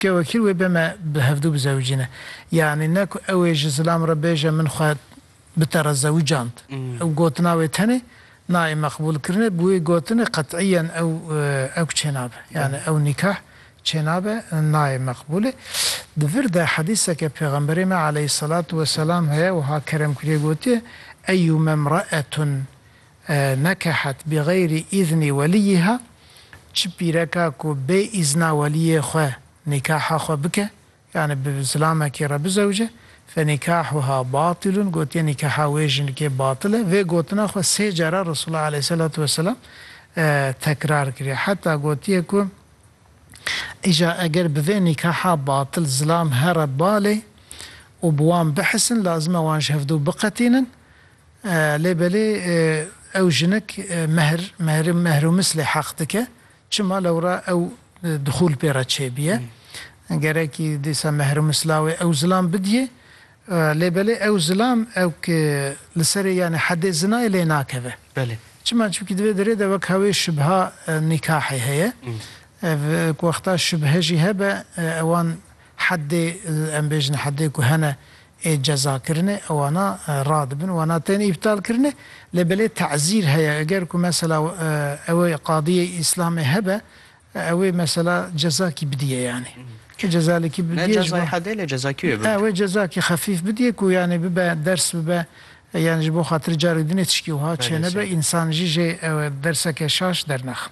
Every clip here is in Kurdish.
Ke wekî wê be me bi hevdu bizewicîne. Yanî ne ku ew ê ji zilam re bêje min xwe bi te re zewicand. Ew gotina wê tenê nayê meqbûlkirine, bi wê gotinê qet'iyen ew ewk çênabe. Yanî ew nîkah çênabe, nayê meqbûlê. Di vir de hedîseke pêxemberê me aleyhîsselatu weselam heye wiha kerem kiriye gotiye, Eyyûme mraetun Nekehet bi xeyrî îznî welîyîha, çi pîreka ku bê îzna welîyê xwe nîkaha xwe bike, yanî bi zilamekî re bizewce, fenîkahuha batîlun, gotiye nîkaha wê jinikê batil e, vê gotina xwe sê cara Resûla Aleyhîselatu Weselam tekrar kiriye. Heta gotiye ku îja eger bi vê nîkaha batil zilam here balê û bi wan bihesin, lazim e wan ji hevdu biqetînin, Lê belê ew jinik mehr, mehri, mehrûmis lê heq dike. Çima lewra ew dixûl pê re çêbiye. Gerekî dîsa mehrûmis lawê ew zilam bidiyê. Lê belê ew zilam ew ki li serê yanê hedê zinayê lê nakeve. Belê. Çima? Çimkî di vê derê de wek ha wê şibha nîkahê heye. Ev ku wexta şibhe jî hebe ewan hedê em bêjin hedê ku hene ê cezakirinê wana radibin, wana tên îptalkirinê lê belê tezîr heye eger ku mesela ew ê qadiyê îslamê hebe ew ê mesela cezakî bidîye yanî tu cezalekî bidîye ji bo. Ne cezayê hedê lê cezakî wê bibe. Wê cezakî xefîf bidîye ku yanî bibe ders bibe yanî ji bo xatir carek dinê tiştî wiha çênebe însan jî jê dersekê şaş dernexin.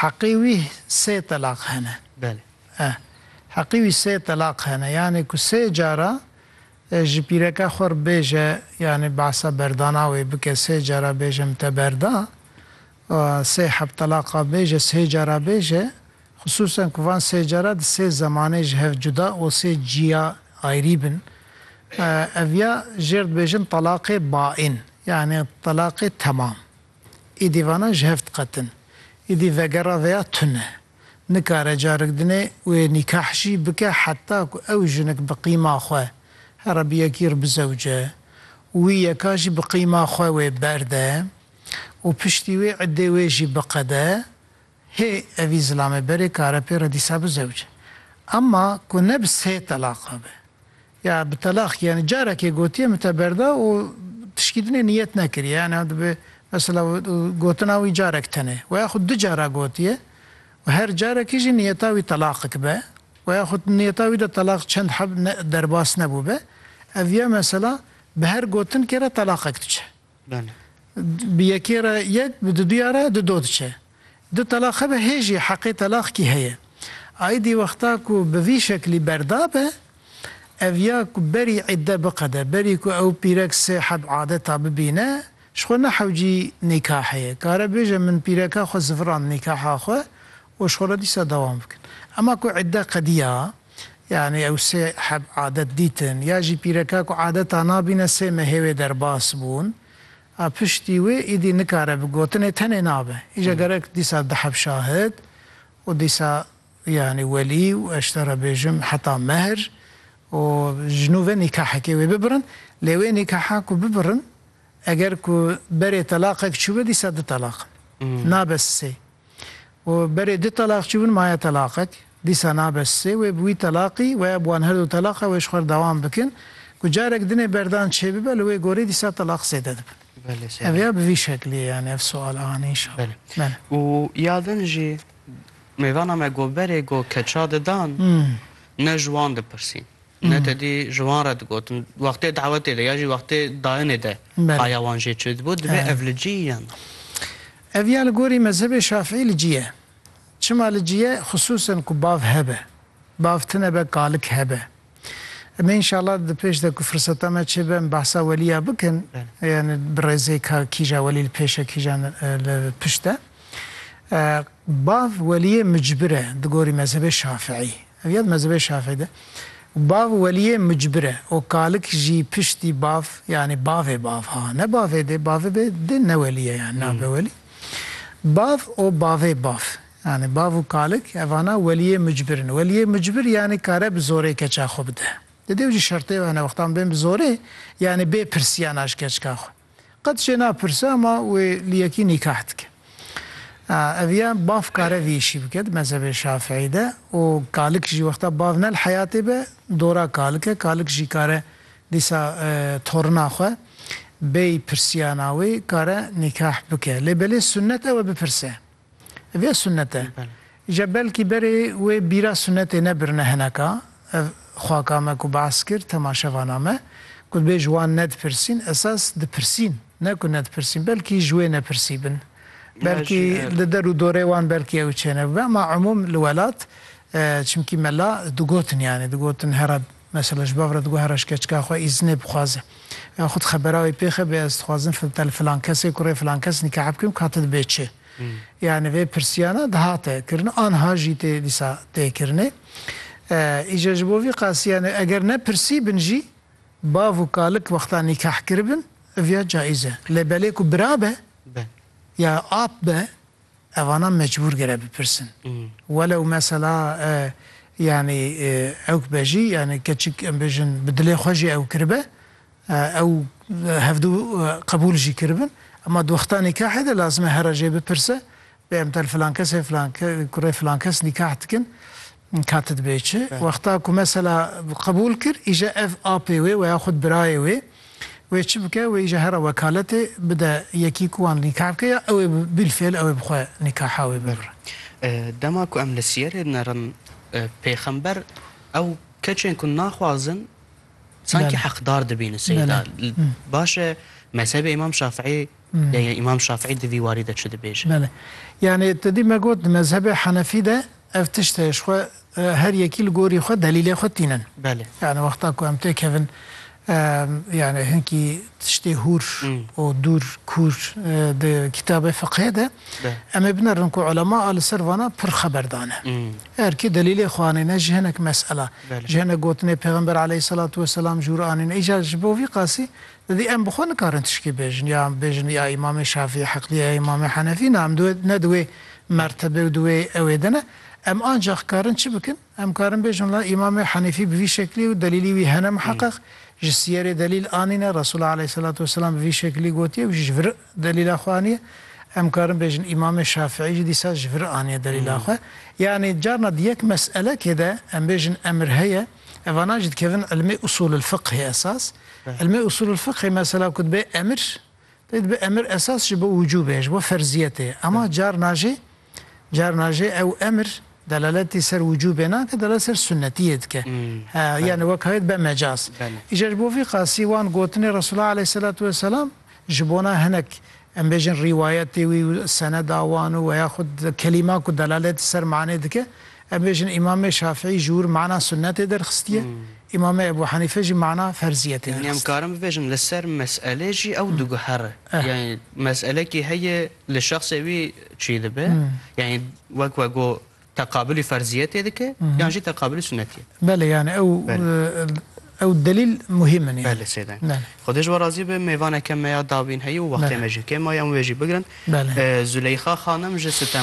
Heqê wî sê telaq hene. Belê. Eh. Heqê wî sê telaq hene. Yanê ku sê cara ji pîreke xwe re bêje yanê behsa berdana wê bike sê cara bêje min te berda. Sê heb telaqa bêje sê cara bêje. Xisûsen ku van sê cara di sê zemanê ji hev cuda û sê ciya ayrî bin. Ev ya jêr dibêjin telaqê baîn. Yanê telaqê temam. Îdî vana ji hev diqetin. Îdî vegera veya tune. Nikare carik dinê wê nîkah jî bike heta ku ew jinik bi qîma xwe here bi yekî re bizewce û wî yeka jî bi qîma xwe wê berde û piştî wê îddê wê jî biqede Hê evî zilamê berê kare pê re dîsa bi zewc. Emma ku ne bi sê telaqa be. Ya bi telaq yanî carekê gotiye min te berda û tişkî din ê niyet nekiriye. Yanî ew dibe mesela gotina wî carek tenê. We ya xwe du cara gotiye û her carekî jî niyeta wî telaqik be. We ya xwe niyeta wî de telaq çend heb ne derbas nebûbe. Ev ya mesela bi her gotinkê re telaqek diçe. Bi yekê re yek, bi duduya re du do diçe. Du telaq hebe hê jî heqê telaq kî heye. Aîdî wexta ku bi vî şeklî berda be, ev ya ku berî îdde biqede, berî ku ew pîrek sê heb adeta bibîne, ji xwe nehewcî nîkahê. Kare bêje min pîreka xwe zivirand nîkaha xwe Û şole dîsa dewam bikin. Ema ku îdde qediya, yanî ew sê heb adet dîtin, ya jî pîreka ku adeta nabîne sê mehê wê derbas bûn, a piştî wê îdî nikare bi gotinê tenê nabe. Îja gerek dîsa di heb şahid û dîsa yanî welî û ez ji te re bêjim heta mehr û ji nû ve nîkahekê wê bibirin. Lê wê nîkaha ku bibirin eger ku berê telaqek çûbe dîsa du telaq in. Nabe sê. Û berê du telaq çûbûn maye telaqek, dîsa nabe sê, wê bi wî telaqî weya bi wan her du teleqa wê ji xwe re dewam bikin, ku carek dinê berdan çêbibe li wê gorî dîsa telaq zêde dibin. Ev ya bi vî şeklî ye yanî ev sual a anî înşallah. Belê. Û ya din jî mêvana me got berê got keça didan ne ji wan dipirsîn ne tedî ji wan re digotin wextê dawetê de ya jî wextê dayinê de haya wan jê çêdibû, divê ev li cihî yan. Ev ya li gorî mezhebê Şafîî li cî ye. Çima li cî ye? Xisûsen ku bav hebe. Bav tine be kalik hebe. Me înşallah di pêş de ku firseta me çêbe em behsa welî ya bikin. Yani bi rêzê ka kîja welî li pêş e kîjan li pişt e. Bav weliyê micbir e di gorî mezhebê Şafîî. Ev ya di mezhebê Şafî de bav weliyê mucbir e û kalik jî piştî bav yanî bavê bav ha ne bavê dê bavê bê dê ne welî ye yanî nabe welî bav û bavê bav yanî bav û kalik evana weliyê mucbir in weliyê mucbir yanî kare bi zorê keça xwe bide di dêw jî şertê hene wextan bên bi zorê yanî bê pirsiyana ji keçka xwe. Qet jê napirse ma wê li yekî nîkah dike. Ev ya bav kare vî îşî bike di mezhebê şafîî de û kalik jî wexta bav ne li heyatê be dora kalik e. Kalik jî kare dîsa torina xwe bêy pirsiyana wê kare nîkah bike. Lê belê sunnet ew e bipirse. Vê sunet e. Je belkî berê wê bîra sunetê nebirine hineka ev xaka me ku behs kir temaşevana me ku dibê ji wan nedipirsîn esas dipirsîn ne ku nedipirsîn belkî ji wê nepirsî bin belkî li der û dorê wan belkî ew çênebûbe ema umûm li welat çimkî mela digotin yanî digotin here Mesela ji bav re diguhere ji keçika xwe îznê bixwaze. Ya xwe di xebera wê pêxe bê ez dixwazim fitel filan kesê kurê filan kes nîkah bikim ka tu dibê çi. Yanî vê pirsiyana dihate kirin anha jî tê dîsa tê kirinê. Îca ji bo vî qasî yanî eger ne pirsî bin jî bav û kalik wexta nîkah kiribin ev ya caîz e. Lê belê ku bira be ya ap be Evana mecbûr gere bipirsin. Welew mesela yanî ewk be jî yanî keçik em bêjin bi dilê xwe jî ew kiribe ew hevdu qebûl jî kiribin ema di wexta nîkahê de lazim e here jê bipirse bê em tel filan kes ê filan kurê filan kes nîkah dikin Min kati dibê çi? Wexta ku mesela qebûl kir îje ev apê wê we ya xwed birayê wê wê çi bike wê îje hera wekaletê bide yekî ku wan nîkah bike ya ew ê bîlfêl ew ê bi xwe nîkaha wê bibire. Dema ku em li siyerê dinerin pêxember ew keçên ku naxwazin sankî heqdar dibînin seyda baş e mezhebê îmam şafîî Ya ya Îmam Şafîî di vî warî de çi dibêje? Belê. Yanî tu dî me got di mezhebê Henefî de ev tişt heye ji xwe her yekî li gorî xwe delîlê xwe tînin. Belê. Yanî wexta ku em têkevin yanî hinkî tiştê hûr û dûr kûr di kîtabê fiqhê de em ê binerin ku ulema a li ser vana pir xeber dane. Her kî delîlê xwe anîne ji hinek mesela. Ji hinek gotinê Pêxember eleyhî selatu weselam jûr anîne. Îcar ji bo vî qasî Di em bi xwe nikarin tişkî bêjin ya em bêjin ya Îmamê Şafî heqlî ye ya Îmamê Henefî na em di wê ne di wê mertebe û di wê ewê de ne. Em ancax karin çi bikin? Em karin bêjin la Îmamê Henefî bi vî şeklî ye û delîlî wî hene miheqeq, ji sîyerê delîl anîne, Resûl aleyhîselatu weselam bi vî şeklî gotiye û jî ji vir delîla xwe aniye. Em karin bêjin Îmamê Şafîî jî dîsa ji vir aniye delîla xwe. Yanî carna di yek meselekê de em bêjin emir heye, Evana jî dikevin ilmê usululfiqhê esas. Ilmê usululfiqhê mesela ku dibe emir, pê dibe emir esas ji bo wicûbê, ji bo ferziyetê ye. Ema carna jî carna jî ew emir delaletî ser wicûbê nake, delalet ser sunnetiyê dike. Yanî wek heye dibe mecaz. Îcar ji bo vî qasî wan gotinê Resûla Eleyhîselatu Weselam ji bona hinek Em bêjin rîwayetê wî û seneda wan û weya xwe di kelîma ku delalet li ser manê dike, em bêjin Îmamê Şafîî ji wir mana sunnetê derxistiye, Îmamê Ebû Henîfe jî mana ferziyetê derxistiye. Yanî em karin bibêjin li ser meselê jî ew diguhere. Yanî meselekî heye li şexsê wî çî dibe. Yanî wek we got Teqabulî ferzîyetê dike yan jî teqabulî sunnetîyê? Belê yanî ew ew delîl muhîm in. Belê sê deng. Xwedê ji we razî be mêvaneke me ya dawîn heye û wextê me jî kêm maye em wê jî bigirin. Zûleyxa xanim ji